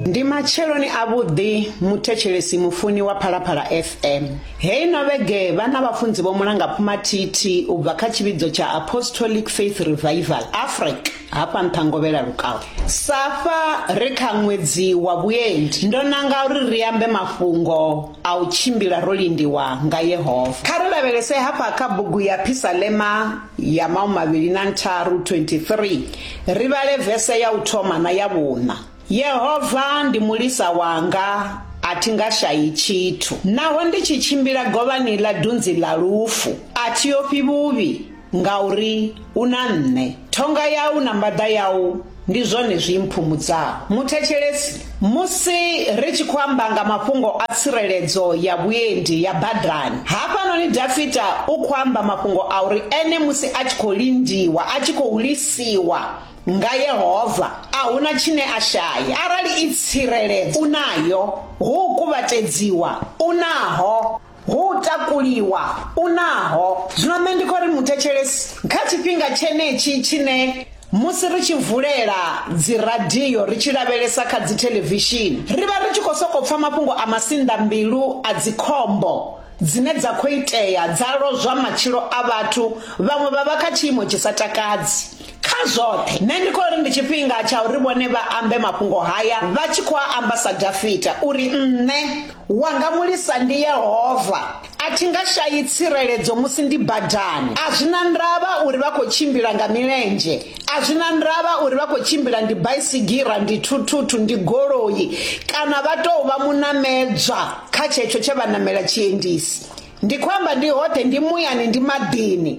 Ndi matsheloni avhuḓi muthetshelesi mufuni wa Phalaphala FM. Heyi no vhege vhana vhafunzi vho mulanga phumathithi u bva kha tshivhidzo tsha Apostolic Faith Revival, Afric, hafha Nṱhangovhela Lukawe. Sa fha ri kha ṅwedzi wa vhuendi, ndo nanga uri ri ambe mafhungo a u tshimbila ro lindiwa nga Yehova. Kha ri lavhelese hafha kha bugu ya Phisalema ya maumavhili na ntharu 23 ri vhale vese ya u thoma na ya vhuṋa. Yehova ndi mulisa wanga, a thi nga shayi tshithu. Naho ndi tshi tshimbila govhani ḽa dunzi ḽa lufu, a thi ofhi vhuvhi. Ngauri u na nṋe. Thonga yau na mbaḓa yau ndi zwone zwi mphumudzaho. Muthetshelesi, Musi ri tshi khou amba nga mafhungo a tsireledzo ya vhuendi ya badani, hafhanoni Dafita u khou amba mafhungo a uri ene musi a tshi khou lindiwa, a tshi khou lisiwa nga Yehova, a hu na tshine a shaya. Arali i tsireledzo u nayo, hu u kuvhatedziwa u naho. Hu u takuliwa u naho. Zwino nṋe ndi khou ri muthetshelesi, kha tshifhinga tshenetshi tshine musi ri tshi vulela dziradio ri tshi lavhelesa kha dzithelevishini, ri vha ri tshi khou sokou pfa mafhungo a masinḓambilu a dzikhombo dzine dza khou itea dza lozwa matshilo a vhathu, vhaṅwe vha vha kha tshiimo tshi sa takadzi. Kha zwoṱhe, nṋe ndi khou ri ndi tshifhinga tsha uri vhone vha ambe mafhungo haya vha tshi khou a amba sa Dafita uri, Nṋe, wanga mulisa ndi Yehova, a thi nga shayi tsireledzo musi ndi badani. A zwi na ndavha uri vha khou tshimbila nga milenzhe, a zwi na ndavha uri vha khou tshimbila ndi baisigira, ndi thuthuthu, ndi goloi kana vha tou vha munamedzwa kha tshetsho tshe vha namela tshiendisi. Ndi khou amba ndi hoṱhe, ndi muyani, ndi maḓini.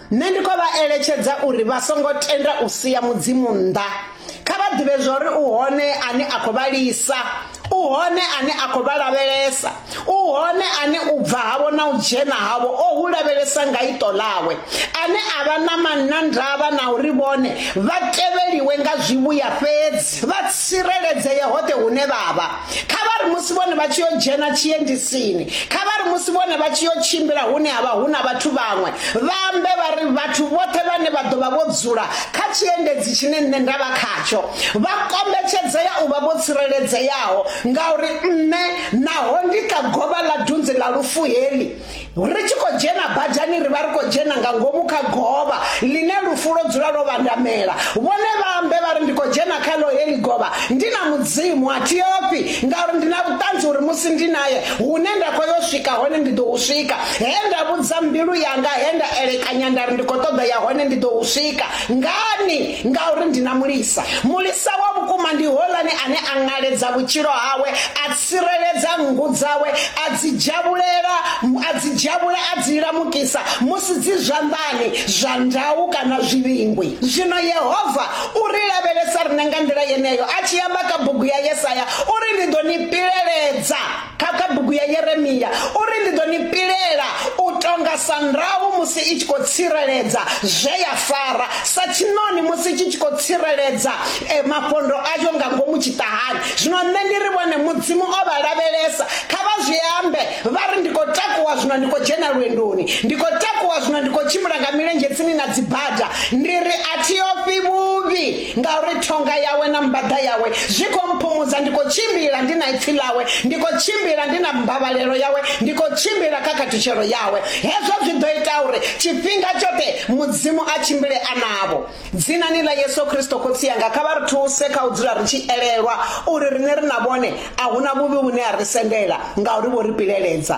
Nṋe ndi khou vha eletshedza uri vha songo tenda u sia Mudzimu nnḓa. Kha vha ḓivhe zwa uri u hone ane a khou vha lisa, u hone ane a khou vha lavhelesa, u hone ane u bva havho na u dzhena havho o hu lavhelesa nga iṱo ḽawe, ane a vha na manna ndavha na uri vhone vha tevheliwe nga zwivhuya fhedzi, vha tsireledzee hoṱhe hune vha vha. kha vha ri musi vhone vha tshi yo dzhena tshiendisini kha vha ri musi vhone vha tshi yo tshimbila hune ha vha hu na vhathu vhaṅwe vha ambe vha ri vhathu vhoṱhe vhane vha ḓo vha vho dzula kha tshiendedzi tshine nṋe nda vha khatsho vha kombetshedzea u vha vho tsireledzeaho ngauri nṋe naho ndi kha govha ḽa dunzi ḽa lufu heli ri tshi khou dzhena badani ri vha ri khou dzhena nga ngomu kha govha ḽine lufu lwo dzula lwo vhandamela vhone vha ambe vha ri ndi khou dzhena kha ḽo heḽi govha ndi na mudzimu a thi ofhi ngauri ndi na vhuṱanzi uri musi ndi naye hune nda khou yo swika hone ndi ḓo u swika he nda vhudza mbilu yanga he nda elekanya nda ri ndi khou ṱoḓa ya hone ndi ḓo u swika ngani ngauri ndi na mulisa mulisa wa vhukuma ndi hoḽani ane a ṅaledza vhutshilo hawe a tsireledza nngu dzawe, a dzi dzhavhulela, a dzi dzhavhula a dzi lamukisa musi dzi zwanḓani zwa ndau kana zwivhingwi. Zwino Yehova u ri lavhelesa riṋe nga nḓila yeneyo a tshi amba kha bugu ya Yesaya uri, Ndi ḓo ni pileledza, kha kha bugu ya Yeremia uri, Ndi ḓo ni pilela u tonga sa ndau musi i tshi khou tsireledza zwe ya fara, sa tshiṋoni musi tshi tshi khou tsireledza eh, mafhondo ayo nga ngomu tshiṱahani. Zwino nṋe ndi ri vhone Mudzimu o vha lavhelesa, kha vha zwi ambe, vha ri ndi khou takuwa zwino ndi khou dzhena lwendoni, ndi khou takuwa zwino ndi khou tshimbila nga milenzhe tsini na dzibada, ndi ri a thi ofhi vhuvhi, ngauri thonga yawe na mbaḓa yawe zwi khou mphumudza, ndi khou tshimbila ndi na ipfi ḽawe, ndi khou tshimbila ndi na mbavhalelo yawe, ndi khou tshimbila kha khathutshelo yawe. Hezwo zwi ḓo ita uri tshifhinga tshoṱhe Mudzimu a tshimbile a navho. Dzinani ḽa Yesu Kristo Khotsi yanga, kha vha ri thuse kha u dzula ri tshi elelwa uri riṋe ri na vhone a hu na vhuvhi vhune ha ri sendela, ngauri vho ri pileledza.